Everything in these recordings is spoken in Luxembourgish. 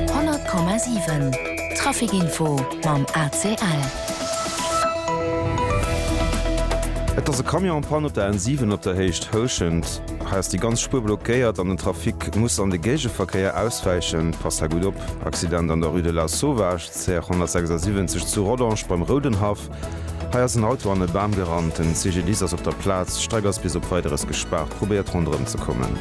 100,7 Traficinfo mam ACL. Et ass e Camion en Panne op der N7 op der Héicht Houschent. Hei ass déi ganz Spuer blockéiert an den Trafic muss an de Géigeverkéier auswäichen. Passt hei gutt op. Accident an der Rue de la Sauvage, CR 176 zu Rodange beim Roudenhaff. Hei ass en Auto an e Bam gerannt. Den CGDIS ass op der Plaz. D'Streck ass bis op Weideres gespaart. Probéiert ronderëm ze kommen.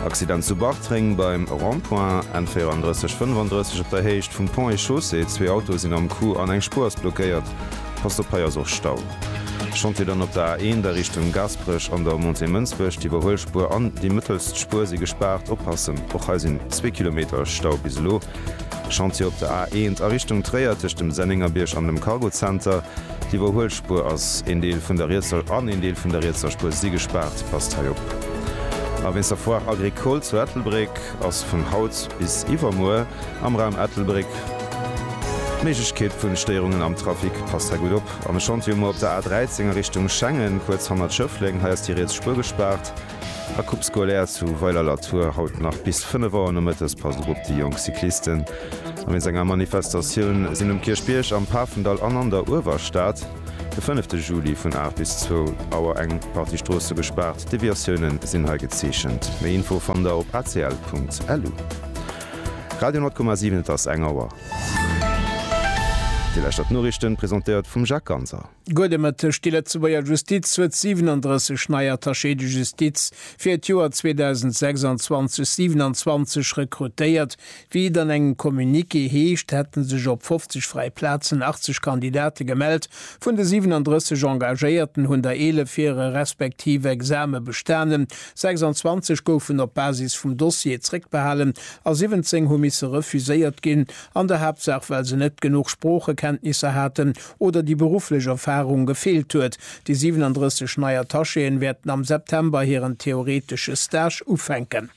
Accident zu Bartreng beim Rond-point N34 35 op der Héicht vum Pont et Chaussée. Zwee Autoe sinn am Coup an eng Spuer ass blockéiert. Passt op, hei ass och Stau. Chantier dann op der A1 a Richtung Gasperech an der Montée Mënsbech. D'Iwwerhuelspuer an déi mëttelst Spuer si gespaart. Oppassen, och hei sinn zwee Kilometer Stau bis elo. Chantier op der A1 a Richtung Tréier tëscht dem Sennéngerbierg an dem Cargo Center. D'Iwwerhuelspuer ass een Deel vun der rietser an een Deel vun der rietser Spuer si gespaart. Passt hei op. A wéinst der Foire Agricole zu Ettelbréck ass vun haut bis iwwermuer am Raum Ettelbréck d'Méiglechkeet vu Stéierungen am Trafic. Passt hei gutt op. An e Chantier muer op der A13 a Richtung Schengen, kuerz hannert Schëffleng. Hei ass déi riets Spuer gespaart. A Coupe Scolaire zu Weiler-la-Tour haut nach bis 5 Auer nomëttes. Passt op op déi jonk Cyclisten a wéinst enger Manifestatioun sinn um Kierchbierg, am Pafendall an an der Uewerstad de fënnefte Juli vun 8 bis 2 Auer eng Partie Stroosse gespaart. Deviatioune sinn hei gezeechent. Méi Info fannt der op acl.lu. Radio 10,7 Et ass eng Auer. Déi leschtert Noriichten, presentéiert vum Jacques Ganser. Gutt e Mëtteg, Déi Lëtzebuerger Justiz huet 37 nei Attachés de justice fir d'Joer 2026, 27 rekrutéiert. Wéi et an engem Communiqué heescht, hätte sech op 50 fräi Plazen 80 Kandidate gemellt. Vun de 37 Engagéierten hunn der 11 hire respektiv Exame bestanen, 26 goufen op Basis vum Dossier zréckbehalen a 17 hu misse refuséiert ginn, an der Haaptsaach well se net genuch Sproochekenntnisser haten oder déi berufflech Erfarung gefeelt huet. Déi 37 nei Attachéen wäerten am September hiren theoretesche Stage ufänken.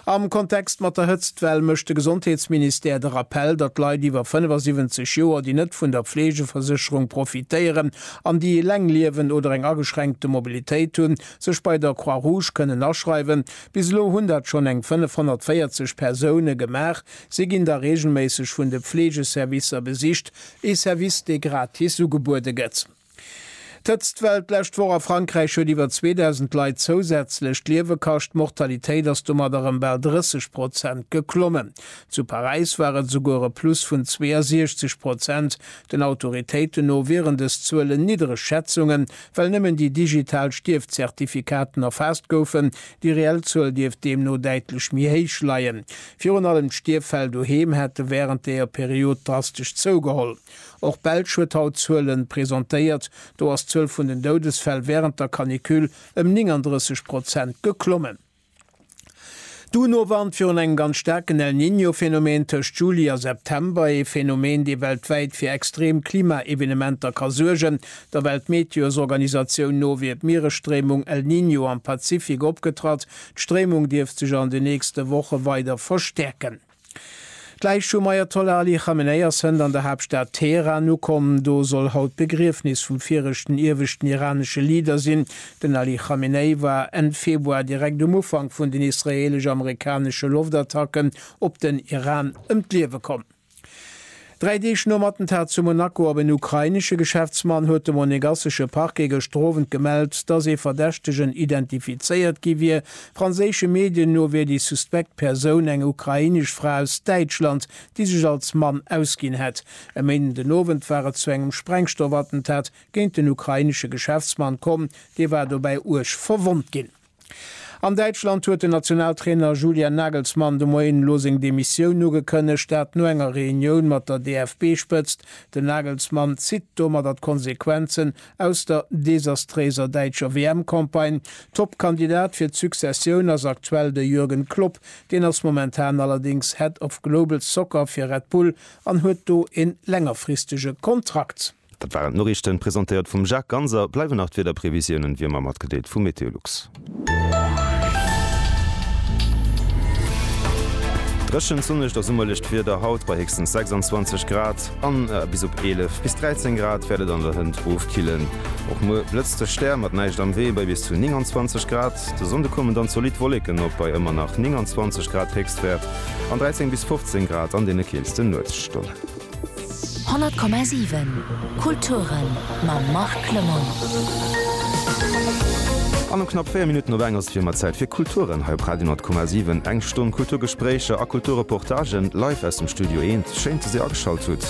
Am Kontext mat der Hëtztwell mécht de Gesondheetsministère de Rappell, datt Leit iwwer 75 Joer, déi net vun der Fleegeversécherung profitéieren an déi eleng liewen oder eng ageschränkte Mobilitéit hunn, sech bei der Croix-Rouge kënnen aschreiwen. Bis elo hunn dat schonn eng 540 Persoune gemaach. Si ginn da reegelméisseg vun de Fleegeservicer besicht. Ee Service, dee gratis ugebuede gëtt. D'Hëtztwell d'lescht Woch a Frankräich huet iwwer 2.000 Leit zousätzlech d'Liewe kascht. D'Mortalitéit ass domat erëm bal 30 Prozent geklommen. Zu Paräis war et esouguer e Plus vun 62 Prozent. Den Autoritéiten no wieren dës Zuelen niddereg Schätzungen, well nëmmen déi digital Stierfzertifikaten erfaasst goufen. Déi reell Zuel dierft deemno däitlech méi héich leien. Virun allem d'Stierffäll doheem hätte wärend deeër Period drastesch zougeholl. Och Belsch huet haut Zuelen presentéiert, do ass d'Zuel vun den Doudesfäll wärend der Canicule ëm 39 Prozent geklommen. D'UNO warnt virun engem ganz staarken El Niño Phänomen tëscht Juli a September, ee Phänomen dee weltwäit fir extrem Klima-Evenementer ka suergen. Der Weltmeteosorganisatioun no wier d'Mieresstréimung El Niño am Pazifik opgetratt, D'Stréimung dierft sech an de nächste Woche weider verstäerken. D'Läich vum Ajatollah Ali Khamenei ass hënt an der Haaptstad Teheran ukomm. Do soll haut d'Begriefnis vum viregten ieweschten iranesche Leader sinn. Den Ali Khamenei war Enn Februar direkt um Ufank vun den israeelesch-amerikanesche Loftattacken op den Iran ëm d'Liewe komm. Dräi Deeg nom Attentat zu Monaco op en ukrainesche Geschäftsmann huet de monegassesche Parquet gëschter Owend gemellt, datt ee Verdächtegen identifizéiert gi wier. Franséische Medien no wier déi suspekt Persoun eng ukrainesch Fra aus Däitschland, déi sech als Mann ausginn hätt. E Méinden den Owend war et zu engem Sprengstoffattentat géint den ukrainesche Geschäftsmann komm, dee war dobäi uerg verwonnt ginn. An Däitschland huet den Nationaltrainer Julian Nagelsmann de Moien elo seng Demissioun ugekënnegt. Dat no enger Reunioun mat der DFB-Spëtzt. Den Nagelsmann zitt domadder d'Konsequenzen aus der desastréiser däitscher WM-Campagne. Top-Kandidat fir d'Successioun ass aktuell de Jürgen Klopp. Deen ass momentan allerdéngs Head of Global Soccer fir Red Bull an huet do e längerfristege Kontrakt. Dat waren d'Noriichten, presentéiert vum Jacques Ganser. Bleiwen nach d'Wiederprevisiounen, wéi ëmmer, matgedeelt vu Meteolux. Dréchent, sonnegt a summerlecht Wieder haut, bei héchstens 26 Grad an bis op 11 bis 13 Grad wäert et an der Hënt ofkillen. Och muer blëtzt de Stär, mat näischt am Wee, bei bis zu 29 Grad. De Sonnde kommen dann zolidd Wolleken op, bei ëmmer nach 29 Grad Héchstwäert an 13 bis 15 Grad an deene keelste Nuetsstonnen. 100,7 Kulturen mam Marc Clement. An um knapp 4 Minutten op eng ass et wéi ëmmer Zäit fir Kulturen hei op Radio 10,7. Eng Stonn Kulturgespréicher a Kulturreportagen live aus dem Studio Eent. Schéin, dass Dir ageschalt hutt.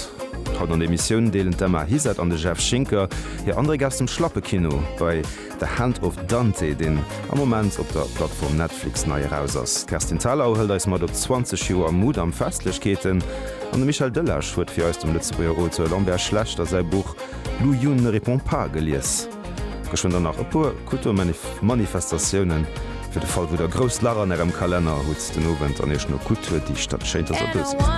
Haut an der Emissioun deelen d'Emma Hisert an de Jeff Schinker hir Andréck aus dem Schlappekino bei. The Hand of Dante, deen am Moment op der Plattform Netflix nei eraus ass. D'Kerstin Thalau hëlt eis mat op 20 Joer Mudam-Festlechkeeten an de Michel Delage huet fir eis dem Lëtzebuerger Auteur Lambert Schlechter säi Buch Lu Yun ne répond pas gelies. Geschwënn dann nach e puer Kulturmanifestatiounen, fir de Fall wou der grousst Lach an ärem Kalenner hutt den Owend an iech no Kultur dicht. Dat schéint ass e Bëssi.